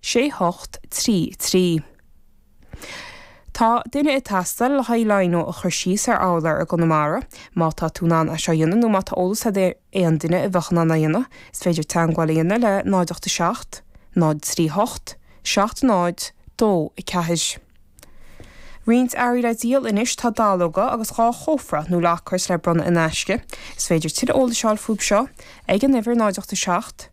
sé ocht trí trí. Tá duine ag teastáil le haghaidh lino a chur síos ar urlár i gConamara. Má tá tú in ann é seo a dhéanamh nó má tá eolas agat ar aon duine a bheadh in ann é a dhéanamh, is féidir teagmháil a dhéanamh le 0 8 7 0 3 8 7 0 2 4. Roinnt earraí le díol anois tá dallóga agus dhá chófra nó lockers le bronnadh in aisce. Is féidir tuilleadh eolais a fháil fúibh seo ag an uimhir 0 8 7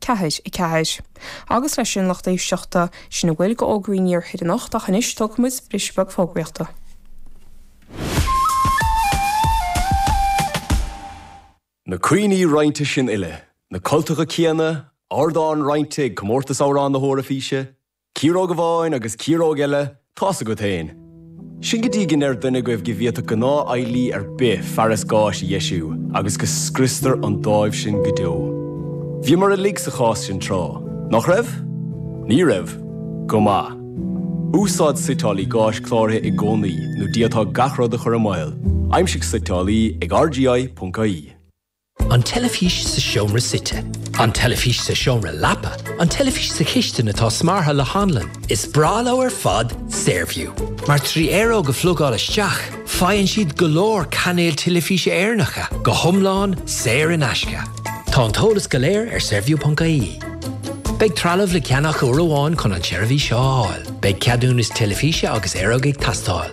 4. 4. agus leis sin a lucht éisteachta sin a bhfuil d'fhógraí an Iarthair anocht ach anois tógfaidh muid briseadh beag fógraíochta. Na cuimhní roinnte sin uile, na cultacha céanna, ardán roinnte ag Comórtas Amhrán na hEoraifíse, Ciaróg amháin agus ciaróg eile, tá's agat fhéin. Sin go dtí go ndeir duine agaibh go bhféadfadh gnáth-cheardaí ar bith fearas gáis a dheisiú agus go scriostar an dáimh sin go deo. Bhíomar uilig sa chás sin tráth, nach raibh? Ní raibh? Go maith. Úsáid suiteálaí gáis cláraithe i gcónaí in ionad gach rud a chur i mbaol, aimsigh suiteálaí ag rgi.ie. An teilifís sa seomra suite. An teilifís sa seomra leapa. An teilifís sa chistin atá smeartha le hanlann. Is breá leo ar fad Saorview, mar trí aeróg a phlugáil isteach, faigheann siad go leor cainéil teilifíse Éireannacha, go hiomlán saor in aisce. Tá an t-eolas go léir ar Saorview.ie. Beidh trealamh le ceannach uair amháin chun an tseirbhís seo a fháil. Beidh ceadúnas teilifíse agus aeróg ag teastáil.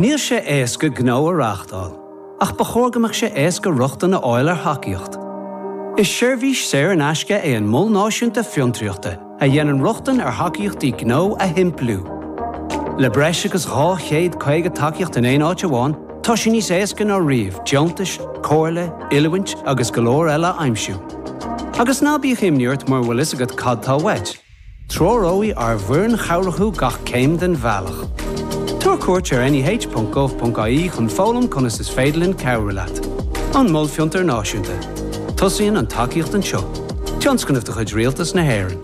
Níl sé éasca gnó a reáchtáil, ach ba chóir go mbeadh sé éasca rochtain a fháil ar thacaíocht. Is seirbhís saor in aisce é an Mol Náisiúnta Fiontraíochta a dhéanann rochtain ar thacaíochtaí gnó a shimpliú. Le breis agus 250 tacaíocht in aon áit amháin, tá sé níos éasca ná riamh deontais, comhairle, oiliúint agus go leor eile a aimsiú. Agus ná bíodh imní ort mura bhfuil fhios agat cad tá uait. Treoróidh ár bhfoireann chabhrach thú gach céim den bhealach. Tabhair cuairt ar neh.gov.ie chun foghlaim conas is féidir linn cabhrú leat. An Mol Fiontair Náisiúnta. Tosaíonn an tacaíocht anseo. Tionscnamh de chuid Rialtas na hÉireann.